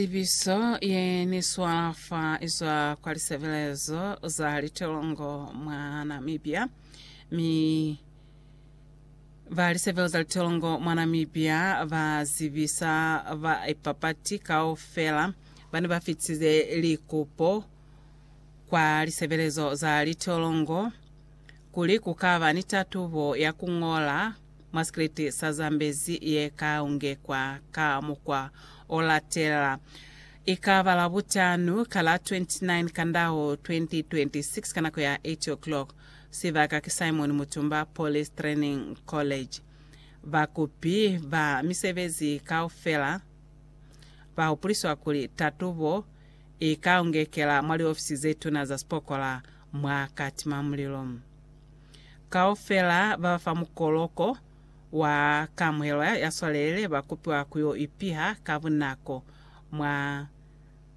Tsebiso ye ni swa fa izwa kwa lisebelezo za litelongo mwa Namibia, mi ba lisebelo za litelongo mwa Namibia ba zibisa baipapati kaufela ba ne ba fitize likupo kwa lisebelezo za litelongo kuli ku ka ba ni tatubo ya ku ñola Mwa sikriti sa Zambezi ye ka ungekwa ka mukwa o latela, i ka ba Labutanu ka la 29 Kandau 2026 ka nako ya 8:00. Sibaka ki Simon Mutumba Police Training College. Bakupi ba misebezi kaufela ba hupuliswa kuli tatubo i ka ungekela mwa liofisi ze tuna za sipokola mwa Katimamulilo. Kaufela ba fa mukoloko wa kamuhelo ya swalelele ba kupiwa ku yo ipiha ka bunako mwa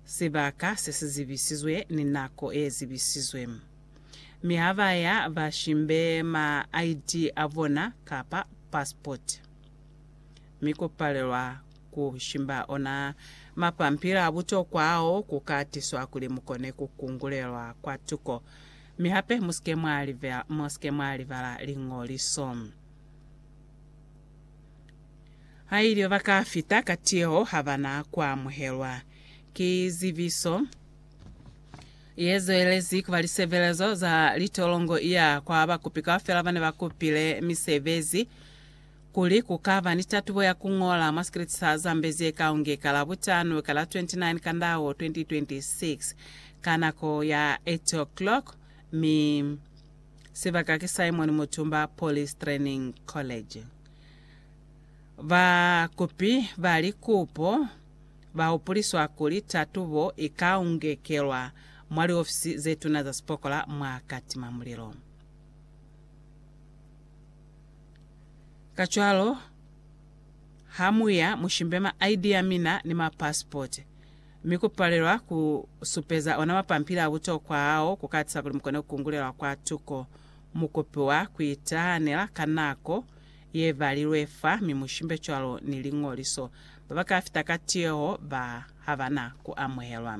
sibaka se si zibisizwe ni nako ye zibisizwe. Mi ha ba ya, ba shimbe ma ID a bona kapa pasipoti. Mi ku palelwa ku shimba ona mapampili a butokwa ao ku ka tiswa kuli mu kone ku kungulelwa kwatuko. Mi hape musike mwa libela, musike mwa libala Liñoliso. Hailio ba ka fita ka tiyeho ha ba na ku amuhelwa. Ki zibiso ye zwelezi ku ba lisebelezo za litolongo ya kwa bakupi kaufela ba ne ba kupile misebezi. Kuli ku ka ba ni tatubo ya ku ñola mwa sikriti sa Zambi ze kaunge ka Labutano ka la 29 Kandao 2026, ka nako ya 8:00, mi sibaka ki Simon Mutumba Police Training College. Ba kupi ba likupo ba hupuliswa kuli tatubo i kaungekelwa mwa liofisi ze tuna za sipokola mwa Katima Mulilo. Kacwalo, ha mu ya, mu shimbe ma ID a mina ni ma passport. Mi ku palelwa ku supeza ona mapampili a butokwa ao ku ka tisa kuli mu kone ku kungulelwa kwa tuko. Mu kopiwa ku itahanela ka nako ye balilwe fa mi mu shimbe cwalo ni liñoliso. Ba ba ka fita ka tiyeho ba ha ba na ku amuhelwa.